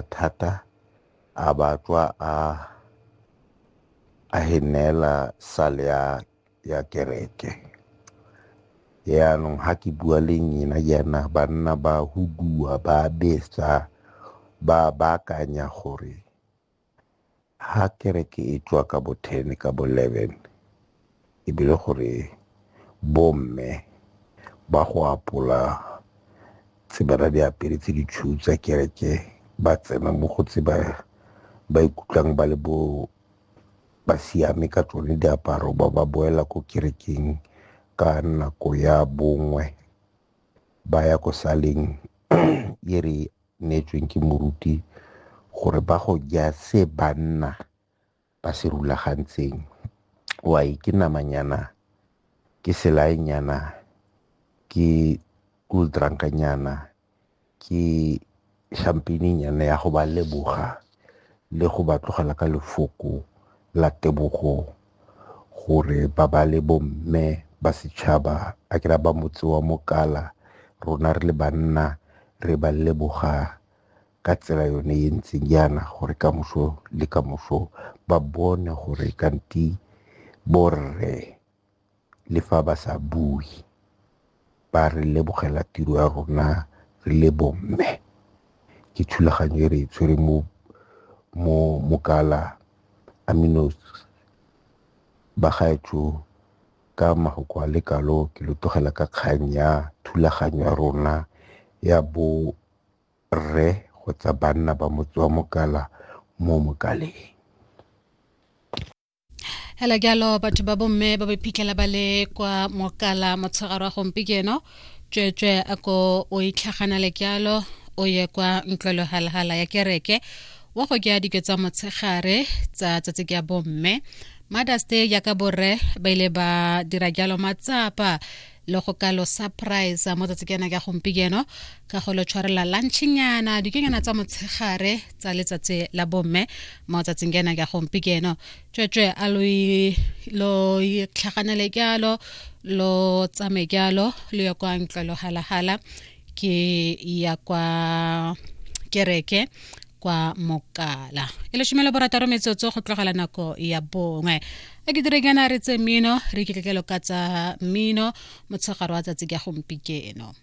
thata a ba tswa a a e neela sale ya ya kereke yaanong ga ke bua le nyena jaana banna ba huduwa ba betsa ba baakanya gore Ha kereke e tswa ka bo ten ka bo eleven e bile gore bomme ba go apola tse ba di apere tse di tshweu tsa kereke ba tsena mo go tse ba ikutlwang ba le bo ba siame ka tsone diaparo ba ba boela ko kerekeng ka nako ya bongwe ba ya ko saleng e re neetsweng ke moruti gore ba go ja se banna ba se rulagantseng wai ke namanyana ke selaenyana ke cool drunkanyana ke champagnenyana ya go ba leboga le go ba tlogela ka lefoko la tebogo gore ba ba le bomme ba setšhaba a kera ba motse wa Mokala rona re le banna re ba leboga ka tsela yone e ntseng yana gore ka moso le ka moso ba bone gore kanti borre le fa ba sa bue, ba re lebogela tiro ya rona re le bomme. Ke thulaganyo e re e tshwere mo mo mokala aminos bagaetsho ka mafoko a lekalo ke lo tlogela ka kgang ya thulaganyo ya rona ya bo rre kgotsa banna ba motse wa mokala mo mokaleng. hela jalo batho ba bomme ba ba iphitlhela ba le kwa mokala motshegaro wa gompieno tsweetswe a ko o itlhaganale jalo o ye kwa ntlwelo halhala ya kereke wa go kea dike tsa motshegare tsa tsatsi ke ya bomme mothers day jaaka borre ba ile ba dira jalo matsapa le go ka lo surprise mo tsatsi ke yana ka gompieno ka go lo tshwarela lunchnyana dikenyana tsa motshegare tsa letsatsi la bomme mo tsatsing ke yana ka gompieno tswetswe a lo lo itlhaganele kyalo lo tsame kyalo lo ya kwa ntlwelo halahala ke ya kwa kereke kwa mokala e le šomelo borataro metsotso go tlogela nako ya bongwe a ke dire kana re tse mmino re kitletlelo ka tsa mmino motshegare wa tsatsi ka gompikeno